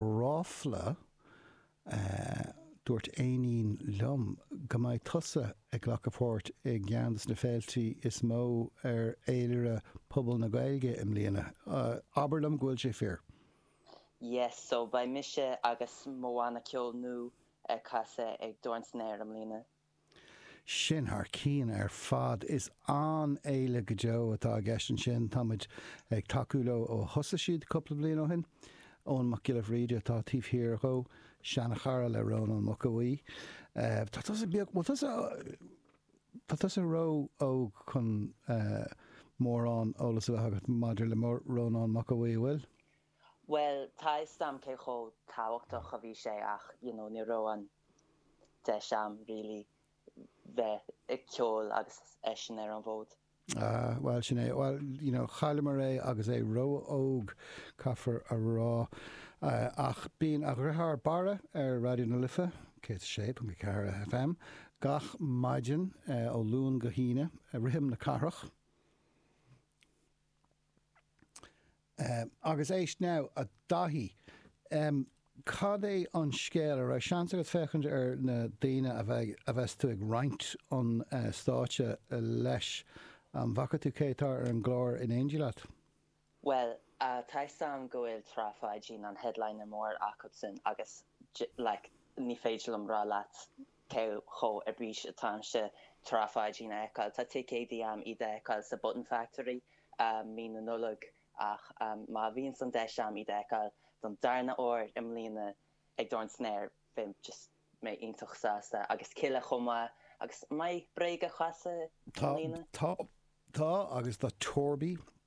ráfla, dúirt éinín liom go mbeidh tusa ag glacadh páirt i gceann de na féiltí is mó ar fhéilire phobal na Gaeilge i mbliana. Abair liom go bhfuil sé fíor! Yes, so beidh mise agus mo bhanna ceoil nua ag casadh ag Dorn san Aer i mbliana. Sin thar cionn ar fad. Is an-fhéile go deo atá i gceist ansin. Tá muid ag tacú leo ó thosaigh siad cúpla bliain ó shin. Eoghan Mac Giolla Bhríde atá taobh thiar dhó, seanchara le Rónán Mac Aodha Bhuí. Tá tusa beag, bhuel tusa, tá tusa ró-óg chun mórán eolas a bheith agat maidir le Rónán Mac Aodha Bhuí, an bhfuil? Bhuel, tá 'fhios a'm cé chomh tábhachtach a bhí sé ach you know ní raibh an deis a'm really bheith ag ceol agus eisean ar an bhfód. Ah, bhuel, sin é. Bhuel, you know, chailleamar é agus é ró-óg, caithfear a rá. Ach bíonn a dheartháir, Barra, ar Raidió na Life, 106.4 FM, gach maidin ó Luan go hAoine, Rithim na Cathrach, Agus éist now, a Dhaithí. Cad é an scéal? An raibh seans agat féachaint ar na daoine a bheas tú ag roinnt an stáitse leis? An bhfaca tú cé atá ar an gclár in éindí leat? Bhuel, tá 'fhios a'm go bhfuil Trá Pháidín, an headliner mór acubsan agus like ní féidir liom rá leat cé chomh ar bís atáimse Trá Pháidín a fheiceáil. Tá ticéad a'm iad a fheiceáil sa Button Factory mí na Nollag ach má bhíonns an deis a'm iad a fheiceáil don darna huair i mbliana ag Dorn san Aer beidh just mé iontach sásta. Agus Kíla chomh maith. Agus an mbeidh Bréag ag casadh i mbliana? Tá, tá, tá, agus tá Torby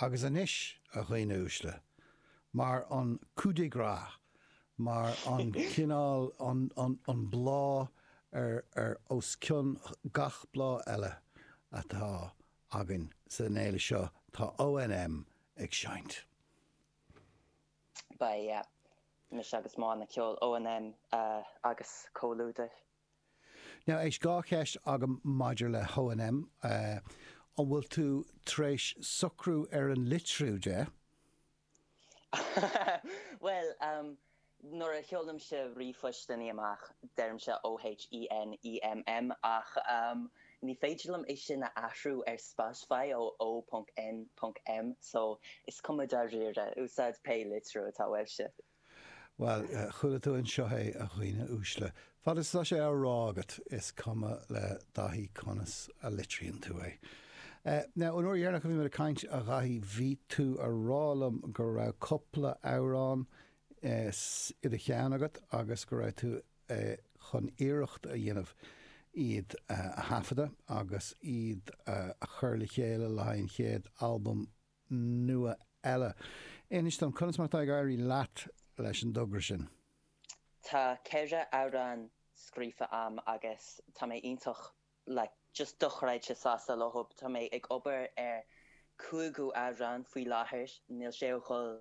Agus anois, a dhaoine uaisle, mar an coup de grâce, mar an cineál, an, an, an bláth ar, ar, os cionn gach bláth eile atá againn san fhéile seo, tá ONM ag seinnt. Beidh mise agus mo bhanna ceoil ONM agus comhluadar. Now, éist dhá cheist agam maidir le hONM, an bhfuil tú tar éis socrú ar an litriú de? Bhuel, nuair a sheolaimse ríomhphostannaí amach, deirimse OHENEMM, ach ní féidir liom é sin a athrú ar Spotify ó O.N.M, so is cuma dáiríre, úsáid pé litriú atá uaibhse. Bhuel, chuala tú anseo é, a dhaoine uaisle. Fad is atá sé á rá agat, is cuma le Daithí conas a litríonn tú é. Now, an uair dheireanach a bhí mé ag caint, a Dhaithí, bhí tú ag rá liom go raibh cupla amhrán i do cheann agat agus go raibh tú chun iarracht a dhéanamh iad a thaifeadadh agus iad a chur le chéile le haghaidh an chéad albam nua eile. Inis dom conas mar atá ag éirí leat leis an dtogra sin. Tá ceithre amhrán scríofa a'm agus tá mé iontach like just dochreidte sásta leo. Tá mé ag obair ar cúigiú amhrán faoi láthair, níl sé ag dul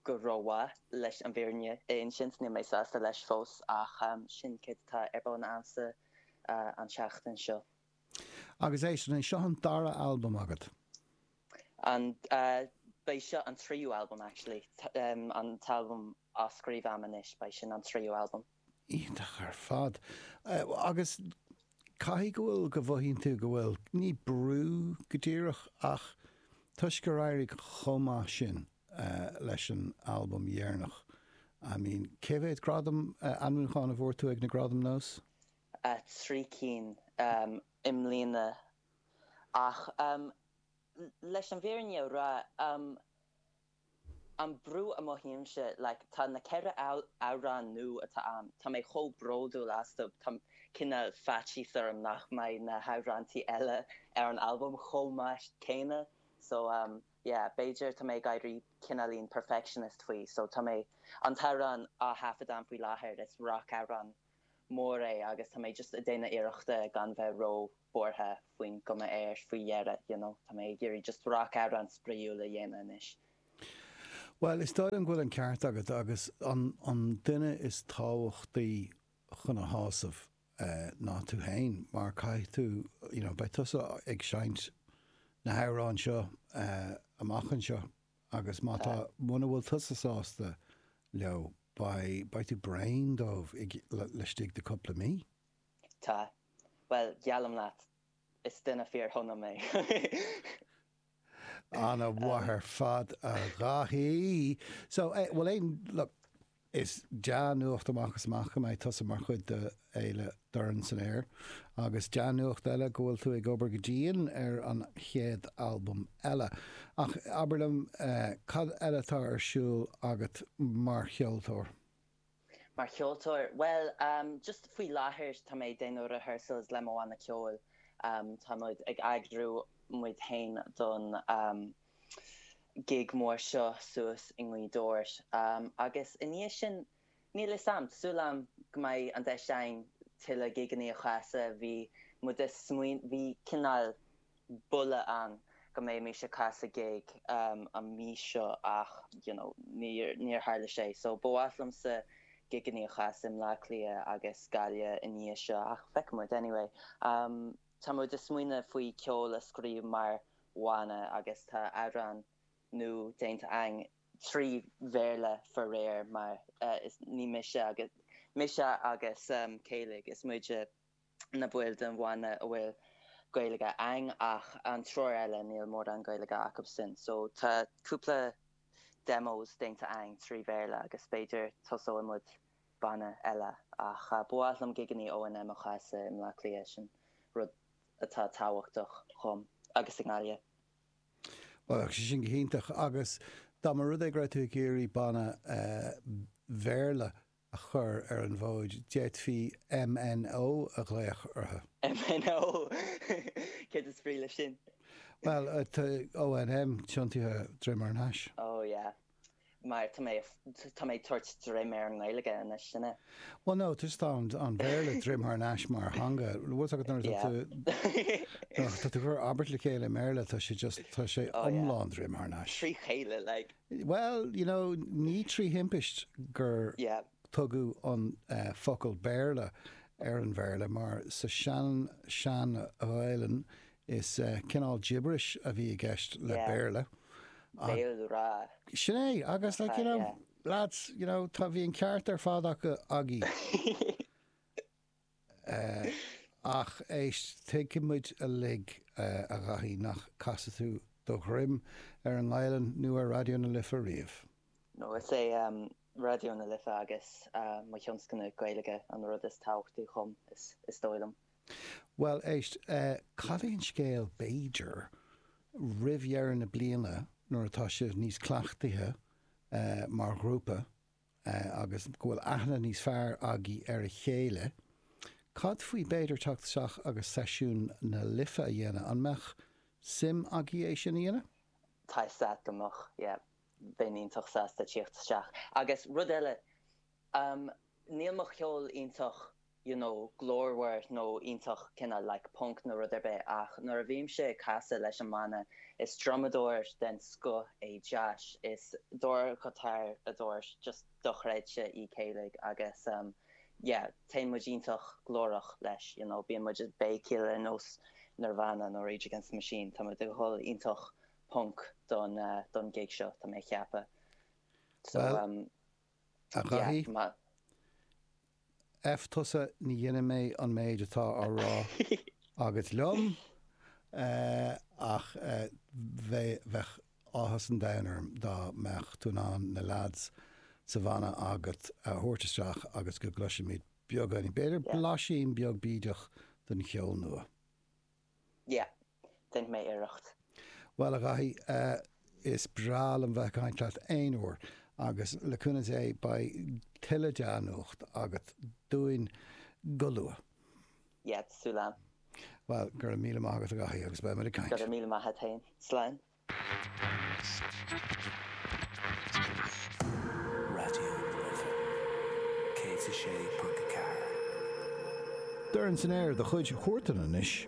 go rómhaith leis an bhfírinne a insint, níl mé sásta leis fós ach sin céard atá ar bun a'msa an tseachtain seo. Agus an é seo an dara albam agat? Á, beidh seo an tríú albam actually, an t-albam á scríobh a'm anois, beidh sin an tríú albam. Iontach ar fad. Agus caithfidh go bhfuil, go mhothaíonn tú go bhfuil, ní brú go díreach ach toisc gur éirigh chomh maith sin leis an albam dheireanach, I mean, cé mhéad gradam, ainmniúchán a bhfuair tú ag na Gradaim NÓS? trí cinn i mbliana. Ach leis an bhfírinne a rá, an brú a mothaímse, tá na ceithre amhrán nua atá a'm, tá mé chomh bródúil astu, tá cineál faitíos orm nach mbeidh na hamhráintí eile ar an albam chomh maith céanna. So yeah, b'fhéidir tá mé ag éirí cineáilín perfectionist faoi. So tá mé, an t-amhrán á thaifead a'm faoi láthair, is rac-amhrán mór é agus tá mé just a' déanamh iarrachta gan bheith ró buartha faoin gcuma atá air faoi dheireadh, you know. Tá mé ag iarraidh just rac amhrán spraíúil a dhéanamh anois. Bhuel, is dóigh liom go bhfuil an ceart agat agus an an duine is tábhachtaí chun a shásamh ná tú fhéin mar caithfidh tú, you know, beidh tusa ag seinnt na hamhráin seo amach anseo agus má tá, muna bhfuil tusa sásta leo, Beidh, beidh tú bréan díobh laistigh de cúpla mí. Tá, bhuel, geallaim leat, is duine fíorshona mé. Ana-mhaith ar fad, a Dhaithí. So, bhuel, aon, look, is dea-nuacht amach is amach go mbeidh tusa mar chuid de eile Doirne san Aer agus dea-nuacht eile go bhfuil tú ag obair go dian ar an chéad albam eile. Ach abair liom, cad eile atá ar siúl agat mar cheoltóir? Mar cheoltóir? Bhuel, just faoi láthair tá mé ag déanamh rehearsals le mo bhanna ceoil. Tá muid ag eagrú muid féin don gig mhór seo suas i nGaoth Dobhair. Agus i ndiaidh sin Níl 'fhios a'am. Súil a'm go mbeidh an deis a'inn tuilleadh gigeannaí a chasadh. Bhí muid a' smaoin, bhí cineál buille ann go mbeimis a' casadh gig an mhí seo ach, you know, níor, níor tharla sé. So, ba mhaith liomsa gigeannaí a chasadh i mBleá Cliath agus Gaillimh i ndiaidh seo ach feicfidh muid. Anyway, tá muid a' smaoineamh faoi ceol a scríobh mar bhanna agus tá amhrán nua déanta a'inn. trí Bhéarla faraor, mar ní mise agus mise agus Céilig is muide na baill den bhanna a bhfuil Gaeilge a'inn ach an triúr eile níl mórán Gaeilge acu sin so tá cúpla demos déanta a'inn trí Bhéarla agus b'fhéidir tosóidh muid banna eile ach ba mhaith liom gigeannaí ONM a chasadh i mBleá Cliath sin rud atá tábhachtach dhom agus i nGaillimh. Bheadh sé sin go hiontach agus dá mba rud é go raibh tú ag iarraidh banna Bhéarla a chur ar an bhfód, d'fhéadfaí MNO a ghlaoch orthu. MNO! Céard is brí leis sin? Bhuel, tá ONM tiontaithe droim thar n-ais. Oh yeah. mar tá mé, tá mé ag tabhairt droim ar an nGaeilge anois, you know. Well no, tá just an an Bhéarla droim thar n-ais mar theanga, bhfuil 's agat nuair atá tú, nuair atá tú ag cur abairt le chéile i mBéarla tá sé just, tá sé iomlán droim thar n-ais. Trí chéile like. Bhuel, you know, ní trí thimpist gur tugadh an focal Béarla ar an Bhéarla mar sa sean, sean Ghaelainn Is cineál gibberish a bhí i gceist le Béarla. Yeah. Béal ráth. Sin é. Agus, like, you know, lads, you know, tá, bhí an ceart ar fad acu a Dhaithí. Ach éist, tuigeann muid uilig, a Dhaithí, nach gcasfadh tú do dhroim ar an nGaelainn nó ar Raidió na Life riamh. No, is é Raidió na Life agus mo thionscnamh Gaeilge an rud is tábhachtaí dhom, is dóigh liom. Bhuel, éist, cad é an scéal, b'fhéidir, roimh dheireadh na bliana nuair atá sibh níos cleachtaithe mar ghrúpa agus go bhfuil aithne níos fearr agaibh ar a chéile, cad faoi b'fhéidir teacht isteach agus seisiún na Life a dhéanamh, an mbeadh suim agaibh é sin a dhéanamh? Tá 'fhios a'd go mbeadh, yeah, bheinn iontach sásta teacht isteach agus rud eile, Um Níl mo cheol iontach you know glórmhar nó iontach kinda like punk nó rud ar bith ach nuair a bhímse ag casadh leis an mbanna is drumadóir den scoth é Josh is dordghiotáraí just dochreidte í Celia agus um yeah téann muid iontach glórach leis you know bíonn muid ag béicíl ar nós Nirvana nó Rage Against the Machine tá muid ag dhul iontach punk don uh don gig seo tá mé ag ceapadh so Well, um A Dhaithí, F tusa, déanfaidh mé an méid atá á rá agat liom, ach bheadh áthas an domhain orm dá mbeadh tú in ann na leaids sa bhanna agat a thabhairt isteach agus go gcloisfimid beagán, b'fhéidir blaisín beag bídeach den cheol nua. Yeah. Dhein mé iarracht. Bhuel, a Dhaithí, is breá liom bheith ag caint leat aon uair, agus le cúnamh Dé, beidh tuilleadh dea-nuacht agat dúinn go luath. Yeah, súil agam. Bhuel, go raibh míle maith agat, a Dhaithí, agus beimid ag caint. Go raibh míle maith a't fhéin. Slán. Dorn san aer do chuid chuairteanna anois.